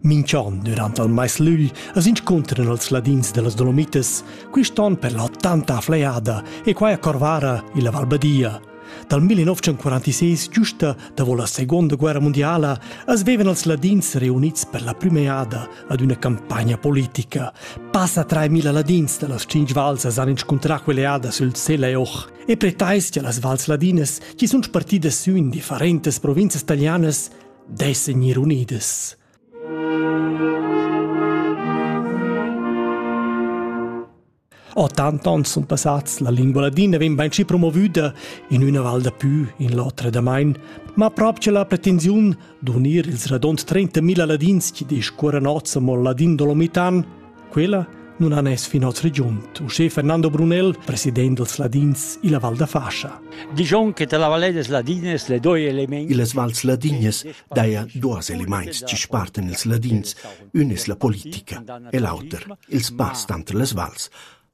Minch'on dürant al mais lügl as inscuntran els ladins da las Dolomitas, quist'on per la tanta fleada e quai a Corvara, illa Val Badia. Dal 1946 giusta davo la Seguonda Guerra mundiala as vevan els ladins reunits per la prüm'eada ad üna campagna politica. Passa 3000 ladins da las tschinch vals as han inscuntrà quell'eada sül Sel e Och. E per tais che las vals ladinas, chi sun spartidas sü in differentas provinzas talianas, dessen ir unidas. A tant ans sun passats, la lingua ladina vegn bainschi promovüda in üna val da pü in l'otra damain, ma prop che la pretensiun d'unir ils radont 30.000 ladins chi discuoran oz amò ladin dolomitan Quella non han es fin hoz regiunt, uschè Fernando Brunel, president dels Ladins illa Val da Fascia. Digion che la Vallée des Ladines le doi elements. Illas vals ladines daja duos elements chi spartan ils ladins. Ün es la politica e l'auter il spass tanter les vals.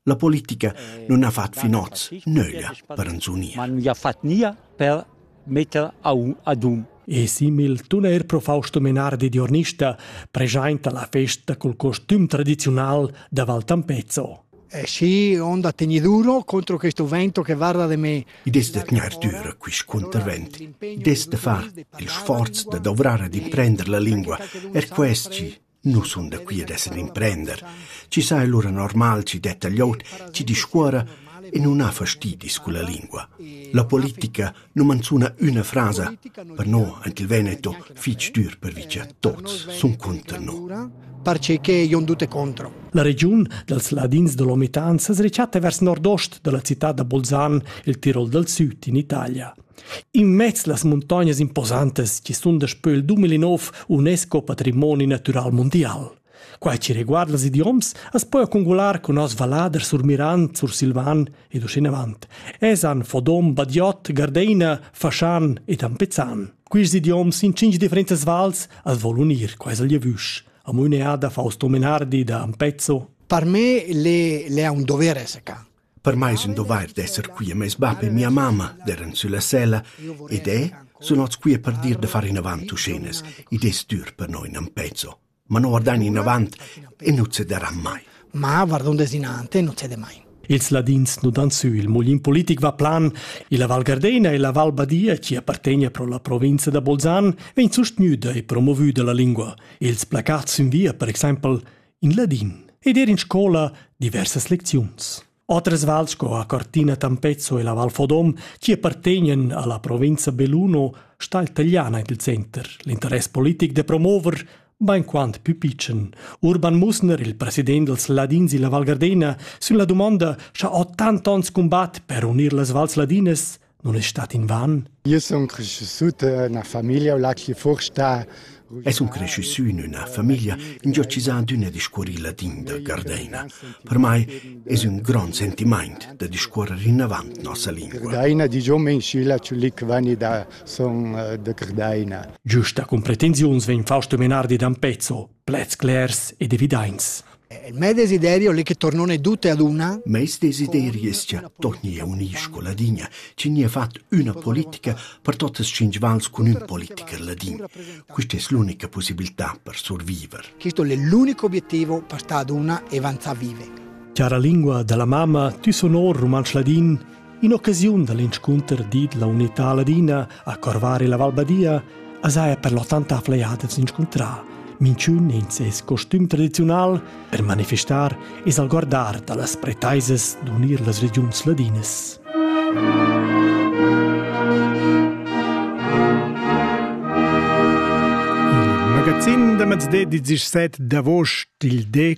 La politica nun ha fat fin hoz nöglia per ans unir. Man ha fat nia per metter ad um. E simil tuner profausto Menardi Diornista preschainta la festa col costüm tradiziunal da Val Tampezzo. Eh sì, onda tegniduro contro questo vento che guarda de me. I des de tgnar dür quist contravent, des de far il sforz da dovrare ad imprender la lingua, er questi Nus sun da qui ad esser d'imprender, chi sa ei lura normal chi detta glieud chi discuora e nun ha fastidis culla lingua. La politica nu manzuna üna frasa, per no ant il Veneto fich dür pervi cha tots sun cunter no. Perceché ion dute contro. La regiun dals ladins da Lomitan s'es rechatta vers nordost da la cità da Bolzan, il Tirol dal süd in Italia. Immez las muntognas imposantas chi sun daspö il 2009 UNESCO patrimoni natüral mundial. Quai chi reguarda ils idioms as po accongular cun nos valladers surmirant, sursilvan ed uschenavant. Esan, Fodom, Badiot, Gardeina, Faschan ed Ampezzan. Quist idioms in cinq differentas vals as vol unir quais al lievüsch. Amo üneada Fausto Menardi da Ampezzo. Per me le, le è un dovere, seca. Per mei sun dovair d'esser qui a meis bap e mia mamma, d'eran sülla sella, ed e sun ots qui per dir da far inavant uschinas. Id es dür per noi nan pezzo. Ma no guardain inavant e nu cederan mai. Ma guardond desinante nu cede mai. Ils Ladins nu dan sü, il mulin politic va plan, e la Val Gardena e la Val Badia, chi appartegna pro la provinza da Bolzan, vegn sustgnüda e promovüda la lingua. Ils placats in via, per exaimpel, in ladin ed ir in scola diversas lecziuns. Otras vals sco a Cortina Tampezzo e la Val Fodom, che appartegnan alla provincia Belluno, sta il Tagliana il center, l'interess politic de promover ben quant più picen. Urban Musner, il president dels Ladins della Val Gardena, sin la domanda scha ho tant ons combat per unir las vals ladinas, non è stat in van? Es un cresciussù in üna famiglia ingiocchisà d'üna discuorilla din da Gardeina. Per mai es un grand sentimaint da discuorrer innavant nossa lingua. Giusta cum pretensiuns vegn Fausto Menardi d'Ampezzo, plets clers ed evidaints. Il mio desiderio è che tornone tutte ad una. Meis desiderio es cha tornia un'iscola ladinia, chi nia fat üna politica per totas tschinch vals cun ün politiker ladin. Quista es l'unica possibilità per surviver. Questo è l'unico obiettivo per stare ad una e avanzare vive. Cara lingua della mamma, tu sonor rumantsch ladin, In'occasiun da l'inscunter dit la unità ladina a Corvari la Valbadia as haja per l'ottanta flajadas inscuntrà minchün in ses costum tradiziunal per manifestar e salguardar da las pretaisas d'unir las regiuns ladinas. Il magazin da mezde 17 d'avost il de